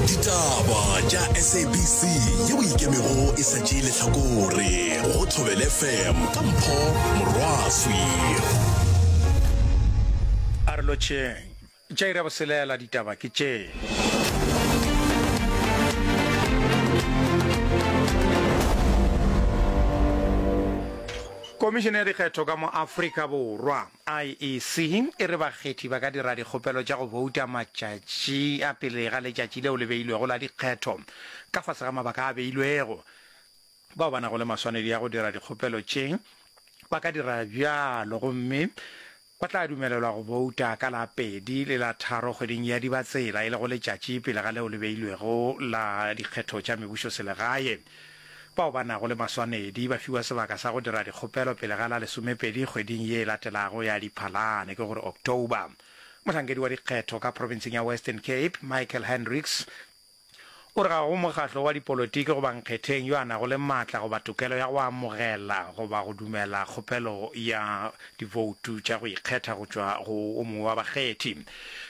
ditaba tša sabc yeo ikemego e sa tšee letlhakore go thobele fm ka mpho morwaswi a re lotšheng tša ira boselela ditaba ke tše komišene ya dikgetho ka mo afrika borwa IEC e re bakgethi ba ka dira dikgopelo tša go bouta matšatši a pele ga letšatši leo le beilwego la dikgetho ka fase ga mabaka a beilwego. Bao ba nago le maswanedi a go dira dikgopelo tše ba ka dira bjalo gomme ba tla dumelelwa go bouta ka la pedi le la tharo kgweding ya Dibatsela, e lego letšatši pele ga leo le beilwego la dikgetho tša mebušoselegae. Bao ba nago le maswanedi ba fiwa sebaka sa go dira dikgopelo pele ga la lesomepedi kgweding ye e latelago ya Diphalane, ke go re October. Mohlankedi wa dikgetho ka provinseng ya Western Cape, Michael Hendricks, o re ga go mokgatlo wa dipolotiki goba nkgetheng yo a nago le matla goba tokelo ya go amogela goba go dumela kgopelo ya diboutu tša go ikgetha go tšwa go o mongwe wa bakgethi.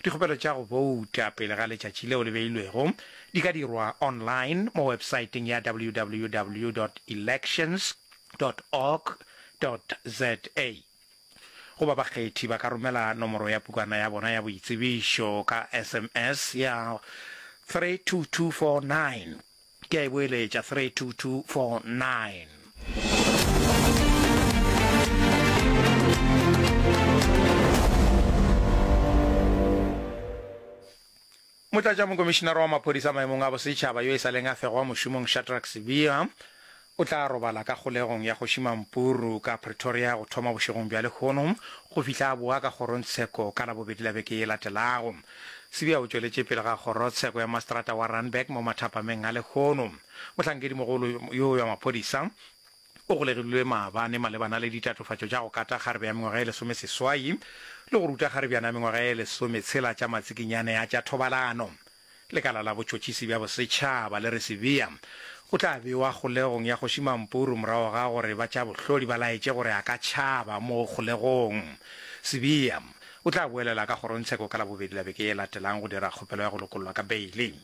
Dikgopelo tša go bouta pele ga letšatši leo le beilwego Di ka dirwa online mo websaeteng ya www dot elections dot org dot za. Goba bakgethi ba ka romela nomoro ya pukana ya bona ya boitsebišo ka sms ya 32249. Ke a e boeletša, 32249. Motlatšamokomišinara wa Maphodisa maemong a Bosetšhaba yo e sa leng a fegwa mošomong Shadrack Sibiya o tla robala ka kgolegong ya Kgoši Mampuru ka Pretoria go thoma bošegong bja lehono go fihla a boa ka kgorongtsheko ka Labobedi la beke ye latelago. Sibiya o tšweletše pele ga kgorotsheko ya maseterata wa Randburg mo mathapameng a lehono. Mohlankedimogolo yo wa maphodisa, O golegilwe maabane malebana le ditatofatšo tša go kata kgarebe ya mengwaga e lesomeseswai le go ruta kgarebjana ya mengwaga e lesometshela tša matsikinyane a tša thobalano. Lekala la Botšhotšhisi bja Bosetšhaba le re Sibiya o tla bewa kgolegong ya Kgoši Mampuru morago ga gore ba tša bohlodi ba laetše gore a ka tšhaba mo kgolegong. Sibiya o tla boelela ka kgorongtsheko ka Labobedi la beke e latelago go dira kgopelo ya go lokollwa ka beile.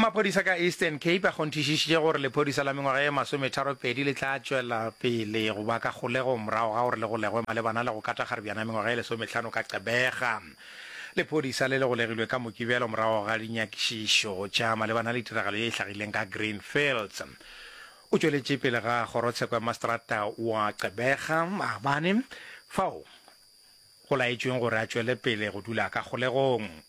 Maphodisa ka Eastern Cape a kgonthišišitše gore lephodisa la mengwaga ye masometharopedi le tla tšwela pele go ba ka kgolego morago ga gore le golegwe malebana le go kata kgaribjana ya mengwaga ye lesometlhano ka Gqeberha. Lephodisa le le golegilwe ka Mokibelo morago ga dinyakišišo tša malebana le tiragalo ye e hlagileng ka Greenfields. O tšweletše pele ga kgorotsheko ya maseterata wa Gqeberha maabane fao go laetšweng gore a tšwele pele go dula ka kgolegong.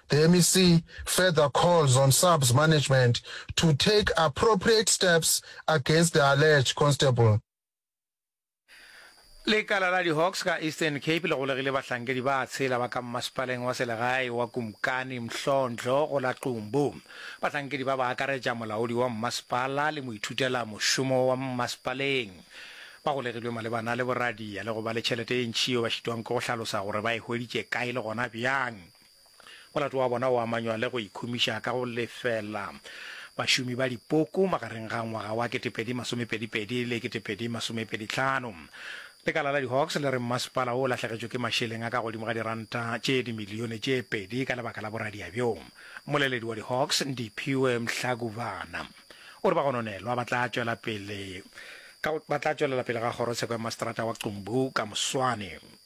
The mec further calls on SAPS management to take appropriate steps against the alleged constable. Lekala la di-Hawks ka Eastern Cape le golegile bahlankedi ba tshela ba ka mmasepaleng wa selegae wa Kumkani Mhlondlo go la Qumbu. Bahlankedi ba ba akaretša molaodi wa mmasepala le moithutela mošomo wa mmasepaleng. Ba golegilwe malebana le boradia le go ba le tšhelete e ntši yeo ba šitwang ke go hlalosa gore ba e hweditše kae le gona bjang. Molato wa bona o amanywa le go ikhumiša ka go lefela bašomi ba dipoko magareng ga ngwaga wa 2022 le 2025. Lekala la di-Hawks le re mmasepala wo o lahlegetšwe ke mašeleng a ka godimo ga diranta tše dimilione tše pedi ka lebaka la boradia bjo. Mmoleledi wa di-Hawks, Ndiphiwe Mhlakubana, o re bagononelwa ba tla tšwela pele ka ba tla tšwelela pele ga kgorotsheko ya maseterata wa Qumbu ka moswane.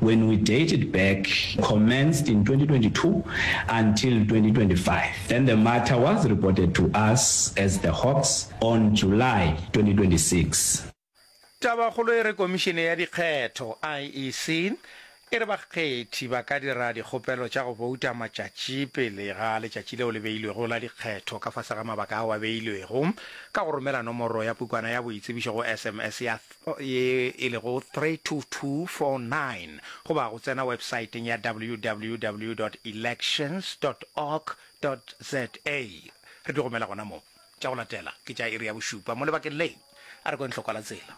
When we date it back, commenced in 2022 until 2025, then the matter was reported to us as the Hawks on July 2026. Tabakgolo e re Komišene ya Dikgetho, IEC, e re bakgethi ba ka dira dikgopelo tša go bouta matšatši pele ga letšatši leo le beilwego la dikgetho ka fase ga mabaka ao a beilwego ka go romela nomoro ya pukwana ya boitsebišo go SMS ya ye e lego 32249 goba go tsena websaeteng ya www.elections.org.za. Re di romela gona moo. Tša go latela ke tša iri ya bošupa mo lebakeng le. A re kweng hlokwa la tsela.